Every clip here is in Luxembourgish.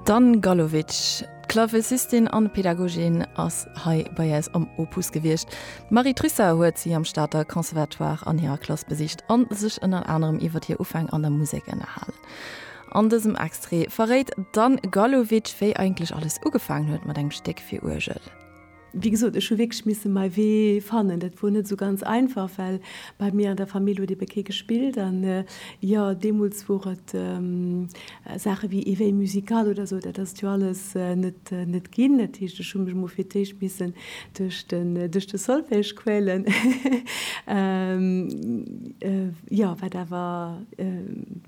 D'Anne Gallowitsch, Klavecistin an Pedagogin, ass hei bei äis am Opus gewiescht. D'Marie Trussart huet si am Stater Conservatoire an hirer Klass besicht an sech ënnert anerem iwwert hir Ufäng an der Musek ënnerhalen. An dësem Extrait verréit d'Anne Gallowitsch wéi eigentlech alles ugefaangen huet mat engem Stéck fir Uergel. Wéi gesot, ech hu wierklech misse mäi Wee fannen. Dat wor net esou ganz einfach, well bei mir an der Famill huet ebe kee gespillt. An jo, deemools wor et Saache wéi Eveil musical oder esou, dat ass et jo alles net ginn. Dat heescht, ech hu mech emol fir d'éischt missen duerch de Solfège quälen, jo, wat awer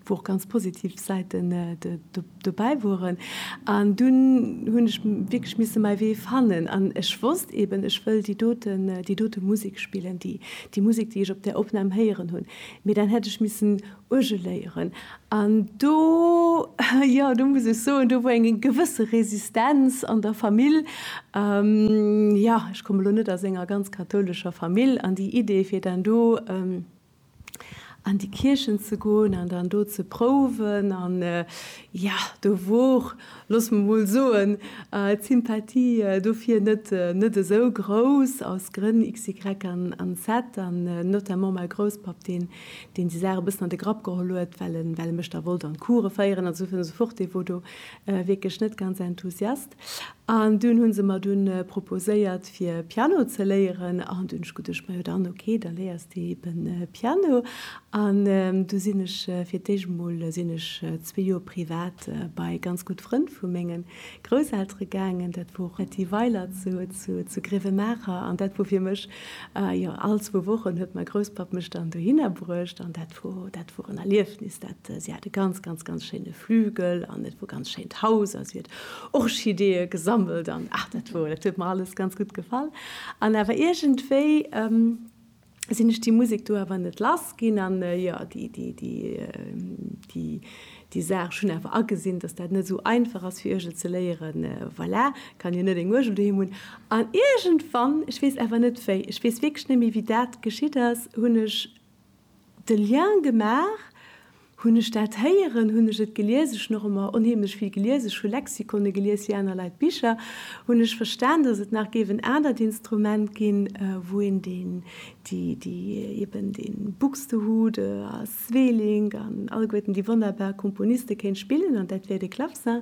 wou och ganz positiv Säiten dobäi woren an dunn hunn ech wierklech misse mäi Wee fannen an ech wosst eben ech wëll déi doten déi dote Musek spillen, déi déi Musek déi ech op där Opnam héieren hunn, mee dann hätt ech missen Uergel léieren an do jo do muss ech soen do wor eng gewësse Resistenz an der Famill. Jo ech komme lo net aus enger ganz kathoulescher Famill an déi Idee fir dann do an déi Kierchen ze goen an dann do ze prouwen an jo, do wor, looss mer mol soen, d'Sympathie dofir net esou grouss, aus Grënn xy an zed, an notamment mäi Grousspapp, deen déi Saache e bëssen an de Grapp geholl huet, well e mech da wollt an d'Coure féieren an esou weiter an esou fort, dee wor do wierklech net ganz enthousiast. An dunn hu se mer dunn proposéiert fir Piano ze léieren an dunn hunn ech geduecht, majo dann ok, da léiers de eben Piano. An du sinn ech fir d'éischt emol sinn ech zwee Joer privat bei ganz gutt Frënn vu menge Grousseltere gaangen. Dat wor Etty Weiler zu Grewe-Maacher an dat wor fir mech, jo all zwou Wochen huet mäi Grousspapp mech dann dohinner bruecht an dat wor, dat wor en Erliefnis. Dat, si hat e ganz, ganz, ganz schéine Flügel an et wor ganz schéint Haus a si huet Orchideeë gesammelt an ach dat wor, dat huet mer alles ganz gutt gefall. An awer iergendwéi sinn ech déi Musek do awer net lass ginn an jo, déi, déi, déi, déi, déi Saach, ech hunn awer agesinn, datt dat net esou einfach ass fir Uergel ze léieren, voilà, kann jo net eng Uergel doheem hunn. An iergendwann, ech weess awer net wéi, ech weess wierklech net méi wéi dat geschitt ass, hunn ech de Lien gemaach, hunn ech dat héieren, hunn ech et gelies, ech hunn och ëmmer onheemlech vill gelies, ech hu Lexikone gelies fir aner Leit Bicher, hunn ech verstan, datt et nach géif en anert Instrument ginn, wou een deen, déi, déi eben de Buxtehude a Sweelinck an alleguerten déi wonnerbar Komponiste kéint spillen, an dat wär de Clavecin.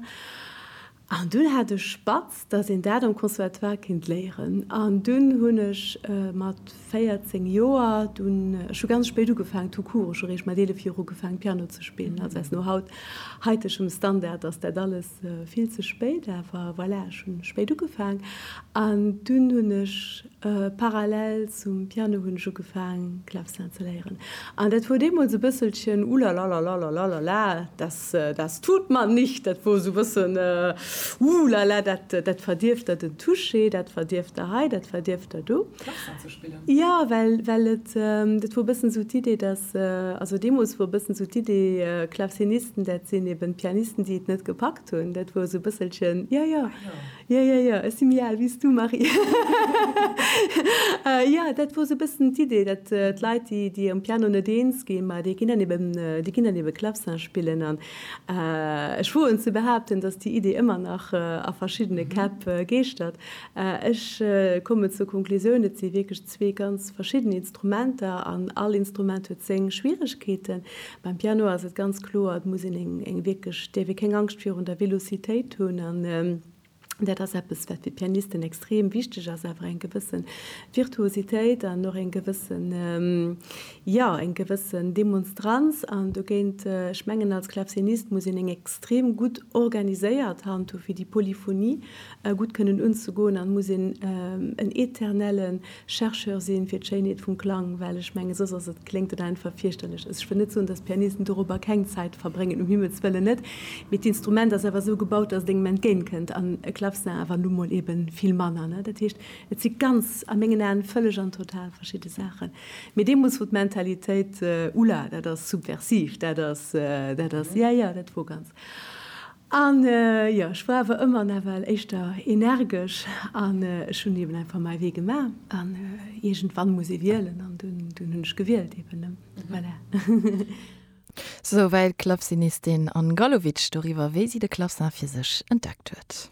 An dunn hat ech spatz, dass een dat am Conservatoire kinnt léieren. An dunn hunn ech mat 14 Joer, dunn, ech hu ganz spéit ugefaangen, tout court, ech hu réischt mat 11 Joer ugefaangen, Piano ze spillen. Also aus no haut, haitegem Standard ass dat alles vill ze spéit, awer voilà, ech hunn spéit ugefaangen. An dunn hunn ech Parallel zum Piano hunn ech ugefaang Klavcin ze léieren, an dat wor deemools e bësselchen Ulalalalalalalala, das, das tut man nicht, dat wor esou e bëssen Ulala, dat, dat verdierft der den Touché, dat verdierft der hei, dat verdierft der do. Klavcin ze spillen? Jo, well, well et, dat wor e bëssen esou d'Idee, dass, also deemools wor e bëssen esou d'Idee, Klavcinisten, dat sinn eben d'Pianisten, déi et net gepackt hunn, dat wor esou e bësselchen, jo, jo. Jo, jo, jo, ech si méi al wéi s du, Marie. Jo, dat wor esou e bëssen d'Idee, dat d'Leit, déi, déi am Piano net eens ginn, ma déi ginn dann eben, déi ginn dann eben Clavecin spillen. An ech woen ze behaupten, datt déi Idee ëmmer nach a verschiddene Käpp geeschtert. Ech kommen zur Konklusioun, et si wierklech Zwee ganz verschidden Instrumenter an all Instrument huet seng Schwieregkeeten. Beim Piano ass et ganz kloer, et muss een eng wierklech, dierf ee keng Angscht virun der Velocitéit hunn an dat ass eppes, wat fir d'Pianisten extrem wichteg ass, awer eng gewësse Virtuositéit an och eng gewëssen, jo, eng gewëssen Demonstranz. An dogéint, ech mengen, als Klavcinist muss een eng extrem gutt organiséiert Hand hu fir déi Polyphonie gutt kënnen unzegoen an muss een en eternelle Chercheur sinn fir d'Schéinheet vum Klang, well ech mengen soss ass et, kléngt et einfach fierchterlech. Ech wëll net soen, dass d'Pianisten doropper keng Zäit verbréngen, um Himmels wëllen net, mee d'Instrument ass awer esou gebaut, dass et engem entgéint kënnt an e Klavcin awer nu mol ebe vill manner, ne? Dat heescht, et si ganz, a mengen Aen, vëlleg an total verschidde Saachen. Mee deemools wor d'Mentalitéit, Ulah, dat ass subversiv, dat ass, dat ass, jo, jo, dat wor ganz. An jo, ech war awer ëmmer nawell éischter energesch an ech hunn eben einfach mäi Wee gemaach. An iergendwann muss ee wielen an dunn hunn ech gewielt eben. Voilà. Souwäit d'Klavsinistin Anne Gallowitsch doriwwer, wéi si de Klavsin fir sech entdeckt huet.